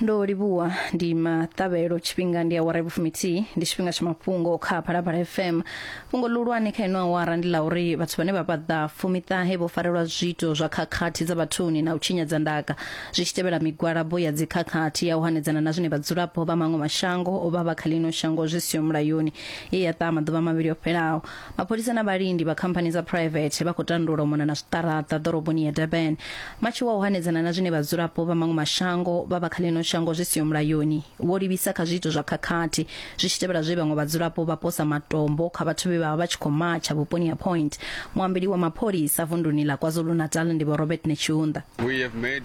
ndo livhuwa ndi maṱavhelo tshifhinga ndi awara ya vhufumithihi ndi tshifhinga tsha mafhungo kha phalaphala fm fhungo ḽihulwane kha ino awara ndi ḽa uri vhathu vhane vha paḓa fumiṱahe vho farelwa zwiito zwa khakhathi dza vhathuni na u tshinyadza ndaka zwi tshi tevhela migwalabo ya dzikhakhathi ya u hanedzana na zwine vhadzulapo vha maṅwe mashango o vha vha kha ḽino shango zwi siho mulayoni ye ya ṱaha maḓuvha mavhili o fhelaho Mapholisa na vhalindi vha khamphani dza phuraivethe vha khou tandula u mona na zwiṱaraṱa ḓoroboni ya Durban vha tshi wa u hanedzana na zwine vhadzulapo vha maṅwe mashango vha vha kha ḽino shango zwi siho mulayoni. Vho livhisa kha zwiito zwa khakhathi zwi tshi tevhela zwe vhaṅwe vhadzulapo vha posa matombo kha vhathu vhe vha vha vha tshi khou matsha vhuponi ha Point. Muambeli wa mapholisa vunduni ḽa KwaZulu-Natal ndi Vho Robert Netshiunda. We have made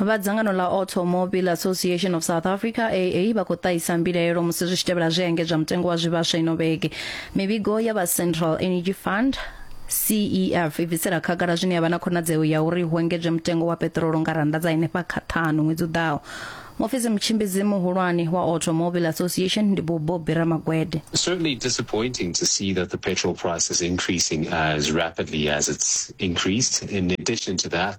vha dzangano ḽa automobile association of south africa aa vha khou ṱahisa mbilaelo musi zwi tshi tevhela zwi engedzwa mutengo wa zwivhaswa ino vhege mivhigo ya vha central energy fund CEF i bvisela khagala zwine ya vha na khonadzeo ya uri hu engedzwe mutengo wa peṱirolo nga rannda dza henefha kha ṱhanu ṅwedzi u ḓaho mufisi mutshimbidzi muhulwane wa automobile association ndi bubo bira magwede It's certainly disappointing to see that the petrol price is increasing as rapidly as it's increased. In addition to that,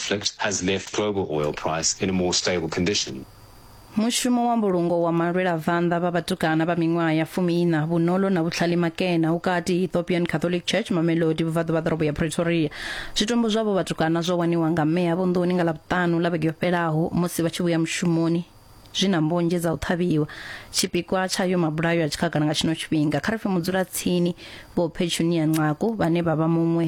conflict has left global oil price in a more stable condition. mushumo wa mbulungo wa malwelavhanḓa vha vhatukana vha miṅwaha ya fumiiṋa vhunolo na vhutlhali makena ukati ethiopian catholic church mamelodi vhuvhaḓu vha ḓorobo ya pretoria zwitumbu zwavho vhatukana zwo waniwa nga meya vunḓuni nga ḽavhuṱanu ḽa vhege yo fhelaho musi vha tshi vhuya mushumoni zwi na mbonzhe dza u ṱhavhiwa tshipikwa tshayo mabulayo a tshikhagala nga tshino tshifhinga kha ri pfe mudzulatsini vho phetshuniya ncaku vhane vha vha muṅwe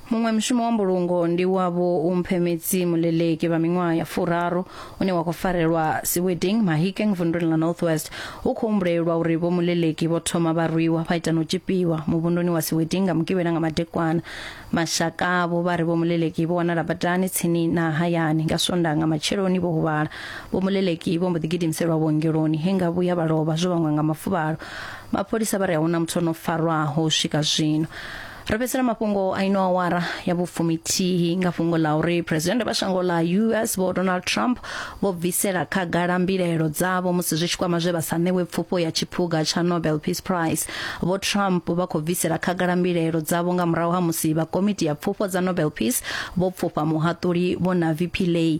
Muṅwe mushumo wa mbulungo ndi wa vhumphemetsi muleleki vha miṅwaha ya furaru une wa khou farelwa Seweding, Mahikeng vunduni ḽa North West. Hu khou humbulelwa uri vho muleleki vho thoma vha rwiwa vha ita na u tzhipiwa muvhunduni wa Seweding nga Mugivhela nga madekwana. Mashaka avho vha ri vho muleleki vho wanala badani tsini na hayani nga Swondaha nga matsheloni vho huvhala. Vho muleleki vho mbo ḓi gidimiselwa vhuongeloni he nga vhuya vha lovha zwo vhangwa nga mafuvhalo. Mapholisa vha ri a hu na muthu o no farwaho u swika zwino. ro fhedzisela mafhungo a ino awara ya vhufumitihi nga fhungo ḽa uri phuresidennde vha shango ḽa us vho donald trump vho bvisela khagala mbilaelo dzavho musi zwi tshi kwama zwe vha sa ṋewe pfufho ya tshiphuga tsha nobel peace prize vho trump vha khou bvisela khagala mbilaelo dzavho nga murahu ha musi vha komiti ya pfufho dza nobel peace vho pfufha muhaṱuli vho na vp lay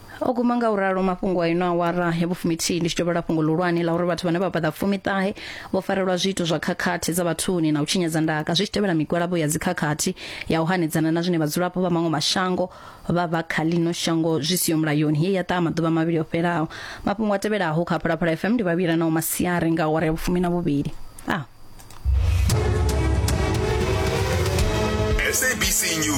o guma nga u ralo mafhungo a ino awara ya vhufumithihi ndi tshi dovhela fhungo ḽihulwane ḽa uri vhathu vhane vha fhaḓa fumiṱahe vho farelwa zwiito zwa khakhathi dza vhathuni na u tshinyadza ndaka zwi tshi tevhela migwalabo ya dzikhakhathi ya u hanedzana na zwine vhadzulapo vha maṅwe mashango vha vha kha ḽino shango zwi siho mulayoni ye ya ṱaha maḓuvha mavhili o fhelaho mafhungo a tevhelaho kha phalaphala fm ndi vhavhila na u masiari nga awara ya vhufumi na vhuvhili ah. SABC News.